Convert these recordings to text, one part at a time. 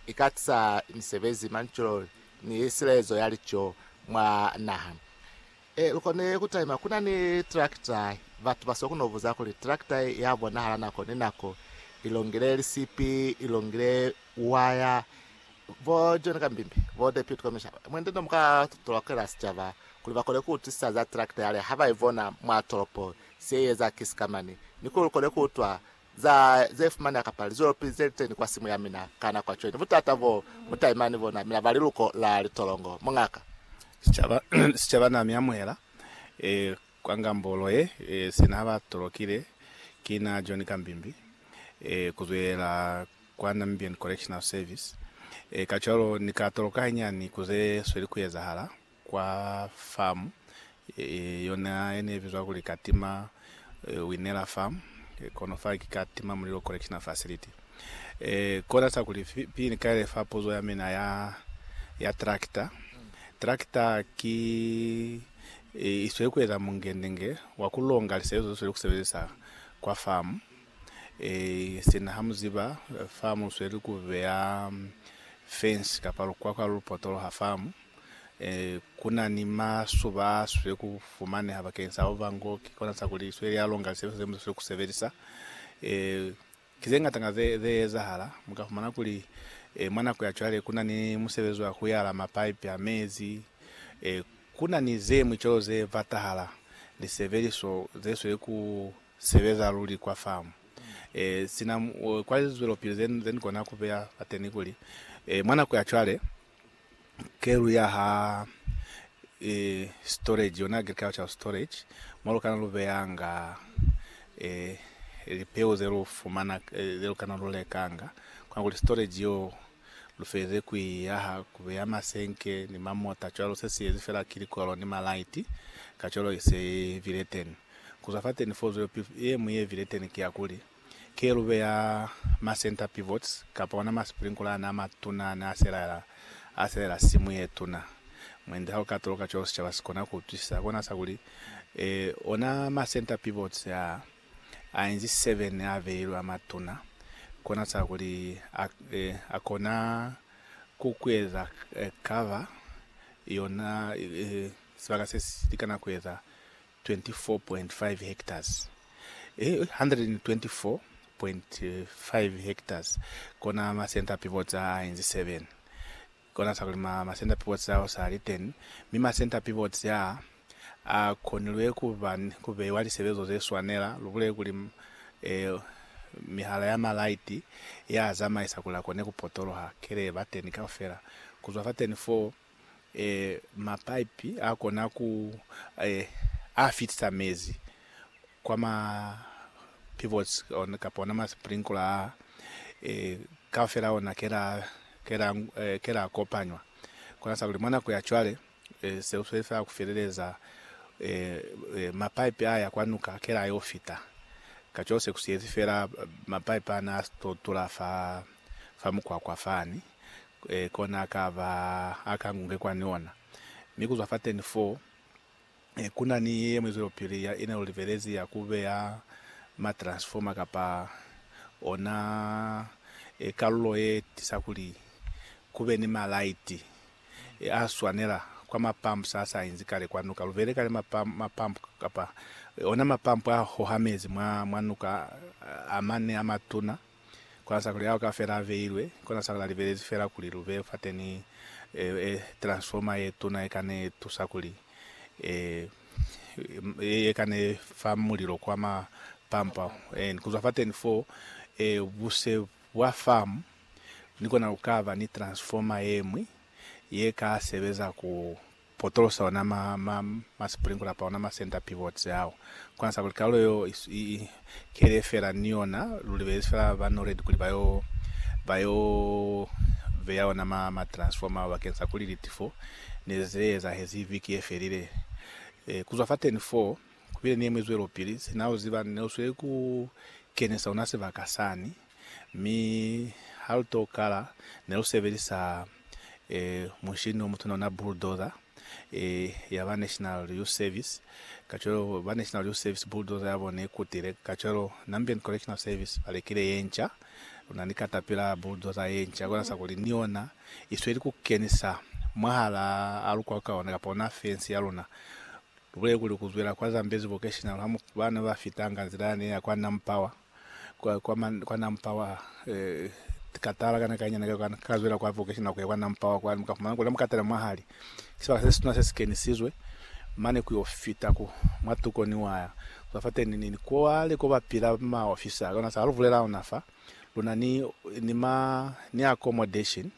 i ka tisa misebezi, manculo, ni silezo ya lico mwa naha. E, lu koni ku taima ku na ni trakita. Batu ba sokuno buza kuli trakita ya bonahala nako ni nako, i longile lisipi, i longile waya. Bo John Kambimbi, bo Deputy Commissioner, mwendi no mu ka tolokela sicaba kuli ba kone ku utwisisa za trakita yale ha ba i bona mwa tolopo, se i eza ki sikamani, ni kuli lu kone ku utwa Za ze fumaneha kapa lizwelopi ze liteni kwa simu ya mina ka nako ya cwene, butata bo mu taima ni bona mina ba liluko la litolongo. Mungaka. Sicaba, sicaba na mi amuhela e kwa ngambolo ye, e sina ba tolokile ki na John Kambimbi, e kuzwelela kwa Namibian Correctional Service. E kacwalo ni ka toloka hañani ku ze sweli ku ezahala. kwa famu ye yona yene ibizwa kuli Katima Winela Farm, kono fa ki Katima Mulilo Correctional Facility. Kona sa kuli pili ni kaile fa puzo ya mina ya ya tractor. Tractor ki isweli ku eza mungendenge wa ku longa lisebezwa ze sweli ku sebelisa kwa famu. Sina ha mu ziba famu usweli ku beya fence kapa lukwakwa lu potoloha famu. Ku na ni masuba a sweli ku fumaneha bakeng sa Ova ngo ki kona sa kuli sweli ya longa lisebesa ze mu sa sweli ku sebelisa. Ki ze ngata nga ze ze ezahala. Mu ka fumana kuli mwa nako ya cwale ku na ni musebezi wa ku yala mapaipi a mezi. Ku na ni ze ñwi cwalo ze batahala lisebeliso ze sweli ku sebeza luli kwa famu. Sina kwa lizwelopili ze ni kona ku beya fateni kuli, mwa nako ya cwale, Kelu ya ha e, storage, yona agricultural storage, mo lukana lu beyanga e, lipeu ze lu fumana, e, ze lukana lu lekanga. Kona kuli storage yo lu feze ku i yaha, ku beya masenke ni mamota cwalo, se si yezi fela ki likwelo ni malaiti, kacwalo i se i bile teni. Kuzwa fateni foo, zwelopili ye ñwi ye bile teni ki ya kuli, Kelube ya ma center pivots kapa ona ma sprinkler ana a matuna ne a selela a selela simu ye tuna. Mwendi ha u ka toloka cwalo sicaba si kona ku utwisisa, kona sa kuli, Ee, ona ma center pivots a a inzi seven a beilwe a matuna, kona sa kuli a, e, a kona ku kueza cover yona, e, sibaka se si likana kueza 24.5 hectares, e 124.5 hectares kona masenta pibots a a inzi 7 kona sa kulima masenta pibots ao sa li 10, mi masenta pibots a a konilwe ku ba ni ku beiwa lisebezo ze swanela, lubule kuli e mihala ya ma light ya zamaisa kuli a kone ku potoloha kele ba teni kaufela kuzwa fa teni foo. e, mapaipi a kona ku e, a fitisa mezi kwa ma pivots ona, kapa ona ma sprinkler a e, kaufela ona kela kela e, kela kopanywa kona sa kuli mwa nako ya cwale e, se usweli fela ku feleleza e, e, mapaipi a ya kwa nuka kela yo fita kacwalo se ku siyezi fela mapaipi ana a si to tula fa fa mukwakwa fani. kona akaba akangunge kwani ona. Mi kuzwa fateni fo, kuna ni yeñwi zwelopili ya ina lu libelezi ya kubeya ma transformer kapa ona kalulo ye tisa kuli kube ni ma light a swanela kwa ma pumps a sa inzi kale kwa nuka. Lubele kale ma pump kapa ona ma pump a hoha mezi mwa nuka amane amatuna. Kona sakula yao kafela a veilwe, kona sakula libelezi fela kuli lu be fateni e, e, transformer ye tuna ye kane tusa kuli e, e, ye kane fa mulilo kwa ma pampa, and kuzwa fateni fo, e, buse bwa farm ni kona lukaba ni transformer yemwi ye ka sebeza ku. potolosa ona ma, ma, ma sprinkler pa ona ma center pivots ao. Kona sa kuli kalulo yeo i, i, i kele fela ni yona, lu libelezi fela ba NORAD kuli ba yo, ba yo beya ona ma, ma transformer ao bakeng sa kuli litifo ne ze ze ezahezi viki ye felile. E, ku zwa fateni foo, ku bile ni yeñwi zwelopili, sina u ziba, ne u sweli ku kenisa ona sibaka sani. Mi ha lu to kala, ne lu sebelisa munshini o mutuna ona bulldozer ya ba National Youth Service. Kacwalo ba National Youth Service bulldozer ya bona ikutile. Kacwalo Nambian Correctional Service ba lekile ye nca. Lu na ni caterpillar bulldozer ye nca, kona sa kuli ni yona i sweli ku kenisa mwahala a lu kwaka ona kapa ona fence ya luna. Lu bulele kuli ku zwela kwa Zambezi Vocational ha ba ne ba fitanga nzila yane ya kwa Nampower. kwa kwa ma kwa nampawa eh katala kana kanya na ka ka zwela kwa vocation ku ya kwa nampawa kwa muka fumana kula mukatala mahali sibaka se situna se sikenisizwe mane ku yo fita ku mwa tuko ni waya kwa fa teni ni ko wale ko ba pila ma officer kana sa luvulela ona fa luna ni ni ma ni accommodation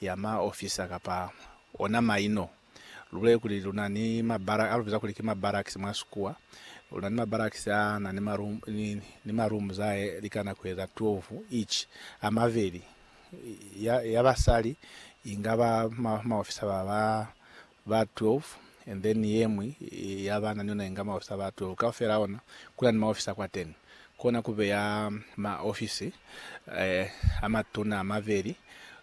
ya ma officer kapa ona maino Lubulele kuli lu na ni mabarak, a lu biza kuli ki mabarakisi mwa sikuwa. Lu na ni mabarakisi a na ni marum, ni, ni marumu za he likana ku eza 12 each, a mabeli, ya, ya basali, inga ba, ma, maofisa ba, ba, ba 12, and then yeñwi ya bana ni yona inga maofisa ba 12. Kaufela ona, ku na ni maofisa kwateni. Kona ku beya maofisi a matuna a mabeli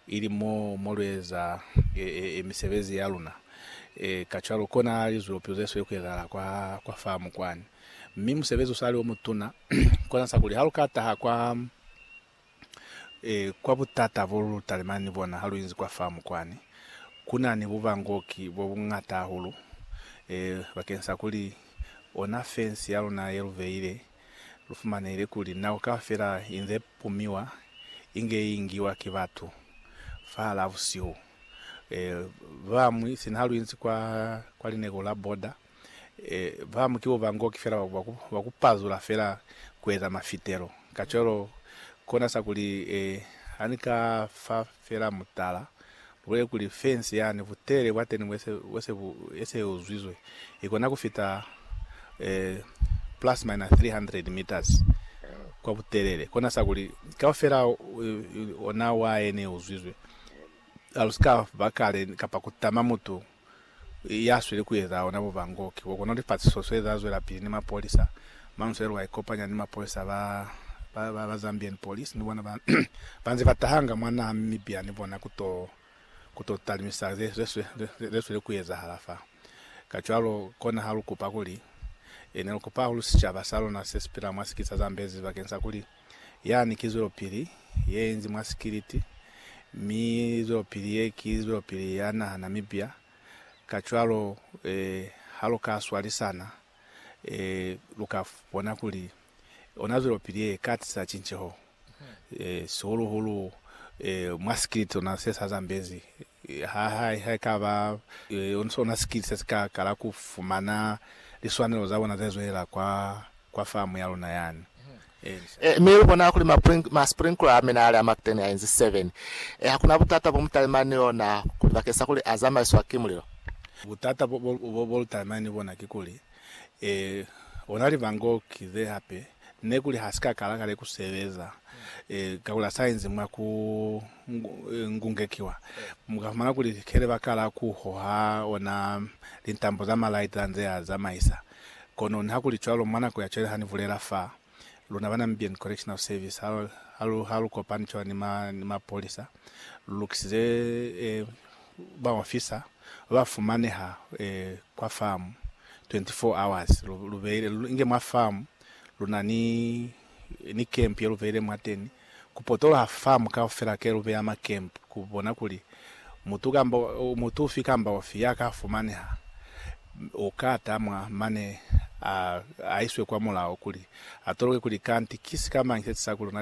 ili mo mo lu eza misebezi ya luna. Kacwalo, kona lizulopizo ze sweli ku ezahala kwa, kwa famu kwani. Mi musebezi u sa li o mutuna, kona sa kuli ha lu ka taha kwa. E, kwa butata bo lu talimani ni bona ha lu inzi kwa famu kwani, ku na ni bubangoki bo buñata hahulu, e, bakeng sa kuli ona fensi ya luna ye lu beile, lu fumanehile kuli nako kaufela inze pumiwa inge i ngiwa ki batu fahalaa busihu. E, ba bañwi, sina ha lu inzi kwa, kwa lineko la border, Ba mu ki bo bangoki fela ba ku pazula fela ku eza mafitelo. Kacwalo, kona sa kuli, ha ni ka fa fela mutala, lu bulele kuli fensi yani, butelele bwa teni bo se bu eseuzwizwe, i kona ku fita plus minus 300 meters kwa butelele. Kona sa kuli, kaufela ona wa eneuzwizwe. Ha lu si ka ba kale kapa ku tama mutu. ya sweli ku eza ona bubangoki bo kona kuti fasiso so eza zwela pili ni mapolisa. Manusela wa ikopanya ni mapolisa ba ba ba Zambian police ni bona ba ba nze ba tahanga mwa naha Mimibia ni bona ku to ku to talimisa ze ze ze sweli ku ezahala fa. Kacwalo kona ha lu kupa kuli, e ne lu kupa hahulu sicaba sa lona se si pila mwa sikisa Zambezi bakeng sa kuli Yani ki zwelopili ye inzi mwa sikiliti, mi zwelopili ye ki zwelopili ya nahana mibya. Kacwalo, ha lu ka swalisana, lu ka bona kuli ona zwelopili ye ka tisa cinceho, sihulu-hulu mwa sikiliti sona se sa zambezi Ha haekaba ona sikili se si ka kala ku fumana liswanelo za bona ze zwelela kwa, kwa famu ya luna yani. Ee, mi lu bona kuli ma sprinkler a mina ali a Mactane a inzi 7. Ee, ha ku na butata bo mu talimani ni ona kuli bakeng sa kuli a zamaiswa ki mulilo. Butata bo lu talimani ni bona ki kuli, ee, ona libango ki ze hape Nekuli ha si ka kala kale ku sebeza, kakuli ha sa inzi mwa ku ngungekiwa, mu ka fumana kuli kele ba kala ku hoha ona lintambo za malaiti ha nze a zamaisa. Kono nihakuli cwalo, mwa nako ya cwale ha ni bulela fa, luna ba Namibian Correctional Service ha lu kopani cwalo ni mapolisa, lu lukisize baofisa ba fumaneha kwa famu 24 hours lu beile inge mwa famu luna ni ni camp ye lu beile mwateni ku potoloha famu kaufela ke lu beya ma camp ku bona kuli mutu kamba mutu ufi kamba ufi ya ka fumaneha uka tamwa mane a aiswe kwa mulao kuli atoloke kuli kanti ki sikamañi se tisakuli luna